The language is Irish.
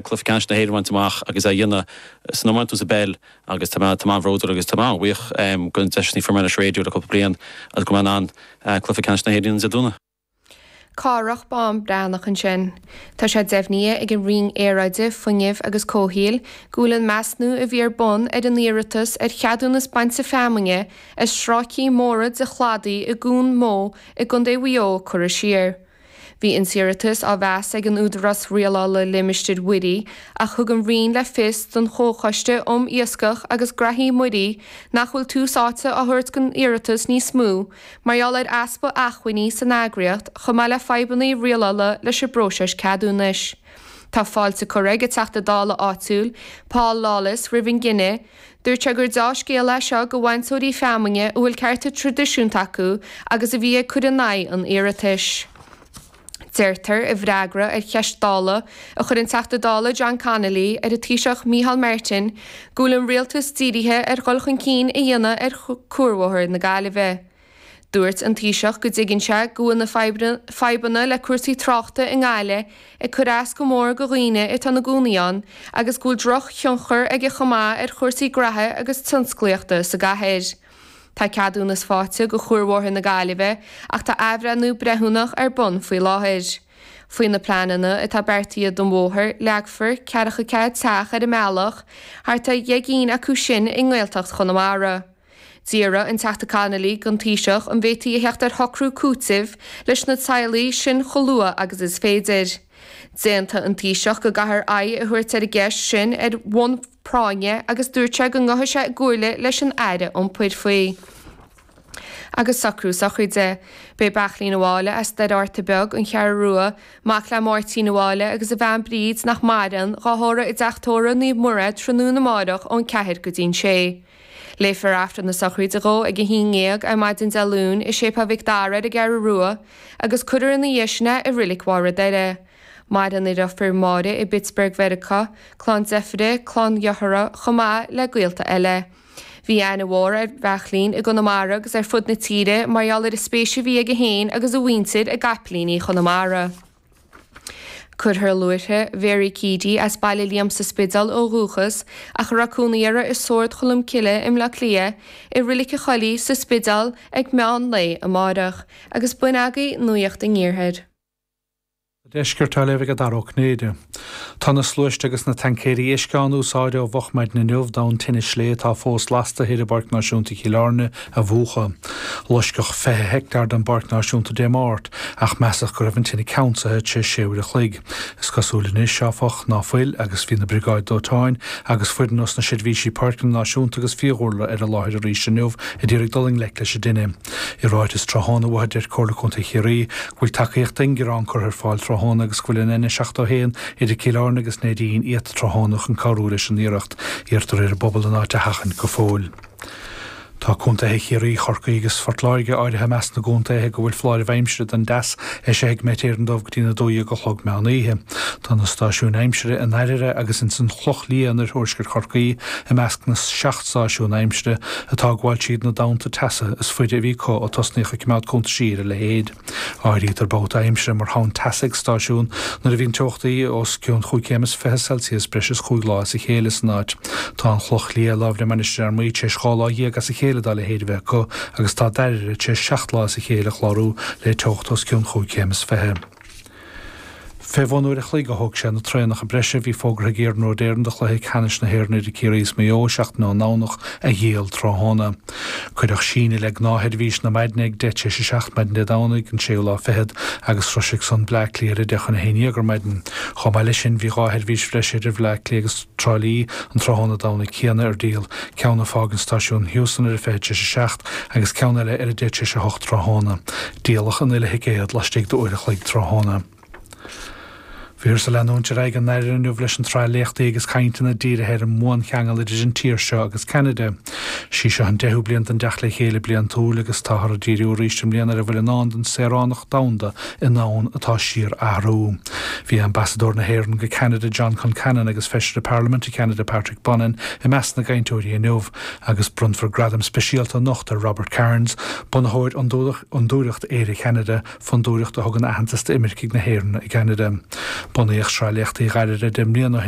Cluiche Ceannais na hÉireann a bhaint amach agus é a dhéanamh san iomáint nó sa bpeil agus tá mé an-bhródúil agus tá mé an-bhuíoch go raibh an deis sin a fuair mé leis an Raidió le cúpla bliain agus go raibh mé in ann Cluiche Ceannais na hÉireann a dhéanamh. Cárthach Bán Breathnach ansin. Tá sé deimhnithe ag an Roinn Aeráide, Fuinnimh agus Comhshaoil go bhfuil an measnú a bhí ar bun ar an iarratas ar cheadúnas bainte feamainne ar stráicí móra de chladaí i gCuan Mó i gContae Mhaigh Eo curtha siar. Bhí an t-iarratas á mheas ag an Údarás Rialála Limistéir Mhuirí ach thug an Roinn le fios don Chomhchoiste um Iascach agus Graithí Muirí nach bhfuil tús áite á thabhairt don iarratas níos mó mar gheall ar easpa acmhainní san eagraíocht chomh maith le fadhbanna rialála leis an bpróiseas ceadúnais. Tá fáilte curtha ag an Teachta Dála áitiúil, Paul Lawless, roimh an gcinneadh. Dúirt sé gur dea-scéal é seo do bhainteoirí feamainne a bhfuil cearta traidisiúnta acu agus a bhí ag cur in aghaidh an iarratais. Deirtear i bhfreagra ar cheist Dála a chuir an Teachta Dála John Connolly ar an Taoiseach Micheál Martin go bhfuil an rialtas dírithe ar dhul chun cinn a dhéanamh ar chuarbhóthar na Gaillimhe. Dúirt an Taoiseach go dtuigeann sé go bhfuil na fadhbanna le cúrsaí tráchta i nGaillimh ag cur as go mór go dhaoine atá ina gcónaí ann agus go bhfuil drochthionchar aige chomh maith ar chúrsaí graithe agus tionsclaíochta sa gcathair. Tá ceadúnas faighte go Chuarbhóthar na Gaillimhe ach tá athbhreithniú breithiúnach ar bun faoi láthair. Faoi na pleananna atá beartaithe don bhóthar, leagfar ceathracha ceathair teach ar an mbealach, thart ar dheich gcinn acu sin i nGaeltacht Chonamara. D'fhiafraigh an Teachta Connolly gon Taoiseach an bhféadtaí a theacht ar shocrú cúitimh leis na teaghlaigh sin chomh luath agus is féidir. D'aontaigh an Taoiseach go gcaithfear aghaidh a thabhairt ar an gceist sin ar bhonn práinne agus dúirt sé go ngabhfaidh sé i gcomhairle leis an Aire Iompair faoi. Agus socrú sochraide. Beidh Beairtlín an Bhaile as Doire Fhatharta Beag, an Cheathrú Rua, mac le Máirtín an Bhaile agus a bhean Bríd nach maireann, dhá thórramh i dteach tórraimh Naomh Muire tráthnóna amárach ón 4 go dtí an 6. Léifear Aifreann na sochraide dhó ag a haon ndéag ar maidin Dé Luain i Séipéal Mhic Dara ar an gCeathrú Rua agus cuirfear ina dhiaidh sin é i Reilig Bharr an Doire. Maireann a dheirfiúr Máire i bPittsburgh Mheiriceá, clann deirfíre, clann dhearthára, chomh maith le gaolta eile. Bhí aithne mhór ar Bheairtlín i gConamara agus ar fud na tíre mar gheall ar an spéis a bhí aige féin agus a mhuintir i gCaiplíní Chonamara. Cuirfear luaithre Mhéaraí Keady as Baile Liam sa Spidéal ó dhúchas ach a raibh cónaí uirthi i Sórd Cholm Cille i mBleá Cliath, i Reilig an Choilligh, sa Spidéal, ag meán lae amáireach, agus b'in agaibh nuaíocht an iarthair. An deisceart atá le bheith ag Dara Ó Cinnéide. Tá na sluaiste agus na taincéirí uisce á n-úsáid ó mhochmhaidin inniu, don tine sléibhe atá fós lasta thoir i bPáirc Náisiúnta Chill Airne a mhúchadh. Loisceadh 20 heicteár den bPáirc Náisiúnta Dé Máirt ach measadh go raibh an tine ceansaithe tar éis sé uair a chloig. Is cosúil anois, áfach, ná fuil agus bhí na briogáid dóiteáin agus foireann ós na seirbhísí páirceanna náisiúnta agus fiadhúlra ar an láthair arís inniu ag iarraidh dul i ngleic leis an dtine. I ráiteas tráthnóna uathu deir Comhairle Contae Chiarraí go bhfuil tacaíocht ingearán curtha ar fáil tráthnóna agus go bhfuil an N71 idir Cill Airne agus Neidín iata tráthnóna chun cabhrú leis an iarracht. Iarrtar ar an bpobal an áit a sheachaint go fóill. Tá contaetha Chiarraí, Chorcaí agus Phort Láirge áirithe i measc na gcontaetha go bhfuil foláirimh aimsire don dteas eisithe ag Met Éireann dóibh go dtí na 12 a chlog meán oíche. Tá na stáisiúin aimsire i nDairbhre agus ins an Chloch Liath in oirthuaisceart Chorcaí i measc na seacht stáisiún aimsire atá ag fulaingt na dtonnta teasa is faide a bhí acu ó tosnaíodh ag coimeád cuntaisí ar a leithéid. Áirítear babhta aimsire mar thonn teasa ag stáisiún nuair a bhíonn teochtaí os cionn chúig chéim is fiche Celsius breis is chúig lá as a chéile san áit. Tá an Chloch Liath, láimh le Mainistir Fhear Maí, tar éis dhá lá dhéag as a chéile dá leithéid a bheith acu agus tá Dairbhre tar éis seacht lá as a chéile a chlárú le teocht os cionn chúig chéim is fiche. Fé bhun uair a chloig a thóg sé na traenacha breise a bhí fógartha ag Iarnród Éireann do chluiche ceannais na hÉireann idir Ciarraí is Maigh Eo seachtain ón nDomhnach a dhíol tráthnóna. Cuireadh síneadh le gnáthsheirbhís na maidne ag deich tar éis a seacht maidin Dé Domhnaigh, an séú lá fichead, agus sroisfidh san Bleá Cliath ar a deich chun a haon dhéag ar maidin. Chomh maith leis sin, bhí dhá sheirbhís bhreise idir Bhleá Cliath agus Trá Lí an tráthnóna Domhnaigh céanna ar díol, ceann ag fágaint stáisiún Heuston ar a fiche tar éis a seacht agus ceann eile ar a deich tar éis a hocht tráthnóna. Díoladh an uile thicéad laistigh d'uair a chloig tráthnóna. Bhíothas ag leanúint ar aghaidh i nDairbhre inniu leis an tsraith léachtaí agus cainteanna dírithe ar an mbuancheangal idir an tír seo agus Ceanada. Is í seo an deichiú bliain den dteacht le chéile bliantúil agus táthar ag díriú arís i mbliana ar a bhfuil i ndán don saoránach domhanda i ndomhan atá ag síorathrú. Bhí Ambasadóir na hÉireann go Ceanada John Concannon agus Feisire Parlaiminte Cheanada Patrick Bonin i measc na gcainteoirí inniu. agus bronnfar gradam speisialta anocht ar Robert Kearns, bunaitheoir Fhondúireacht Éire Cheanada, fondúireacht a thugann aitheantas d'imircigh na hÉireann i gCeanada. Bunaíodh sraith léachtaí Dhairbhre deich mbliana ó shin.